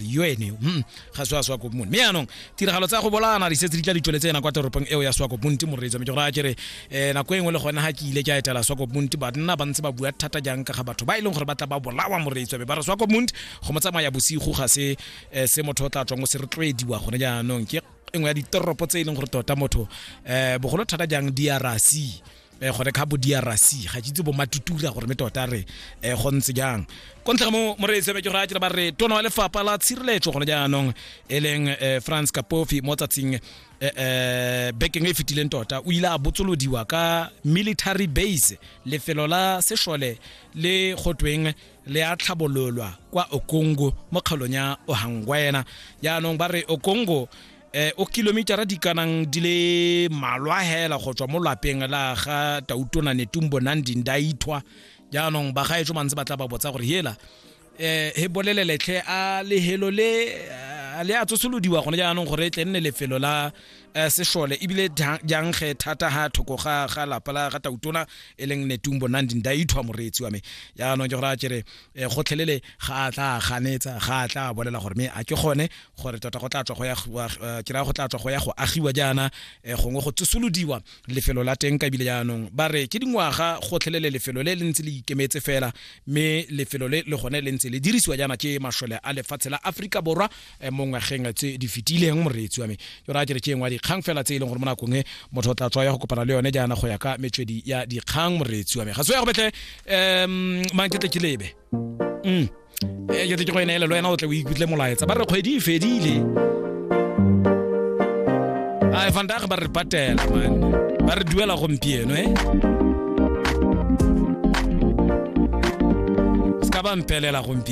yo ene yo mm, ga se wa swakopmone mme yaanong tiragalo tsa go bolaana di setse di tla di tsweletse ena kwa toropong eo ya swakopmonte moreetsa mme ke gore a kere um nako e nngwe le gone ga ke ile ke a etela swakopmonte banna ba ntse ba bua thata jang ka ga batho ba e leng gore ba tla ba bolawa moreetsa be ba re swakopmonte go mo tsamaya bosigo ga se um se motho o tla tswang o se rotloediwa gone jaanong ke engwe ya ditoropo tse e leng gore tota motho um bogolo thata jang drc eh gone ka bo DRC ga itse bo matutura gore me tota re eh go ntse jang go ntlha mo mo re tsebe ke go a tla ba re tono le fapa la tshireletso gone jaanong eleng eh, France Kapofi mo tsatsing eh, eh bekeng e fitileng tota o ile a botsolodiwa ka military base lefelo la seshole le gotweng le a tlhabololwa kwa Okongo mo kgaolong ya Ohangwena jaanong ba re Okongo eh, o kilomitara di kanang di le malwa hela go tswa mo lapeng la ga tautona netung bonang dinda ithwa jaanong ba gaetso ba ntse ba tla ba botsa gore hela um eh, he boleleletlhe a lehelo le eh, le a tsosolodiwa gone jaanong gore e tle nne lefelo la um sešole ebile jang ge thata ga thoko ga lapa la ga tautona e leng netung bonang dinda ithwa moreetsi wa me jaanong ke gore a kere um gotlhelele ga a tla ganetsa ga a tla bolela gore me a ke gone gore tota go tla tswa go ya eh, ke raya go tla tswa go ya go agiwa jaana um gongwe go tsosolodiwa lefelo la teng ka ebile jaanong ba re ke dingwaga gotlhelele lefelo le le ntse le ikemetse fela mme lefelo le le gone le ntse le dirisiwa jaana ke masole a lefatshe la aforika borwa Eh, mo ngwageng tse di fetileng moreetsi wa me ke ra ke re ke engwa dikgang fela tse e leng gore mo nakong e motho o tla tswa ya go kopana le yone jaana go ya ka metswedi ya dikgang moreetsi wa me ga se ya go betle um mang ke tle ke lebe mm. eh, ke tle ke go ene elelo wena o tle o ikutlwe molaetsa ba re kgwedi e fedile a fandage ba re patela man ba re duela gompieno e se ka ba mpelela gompieno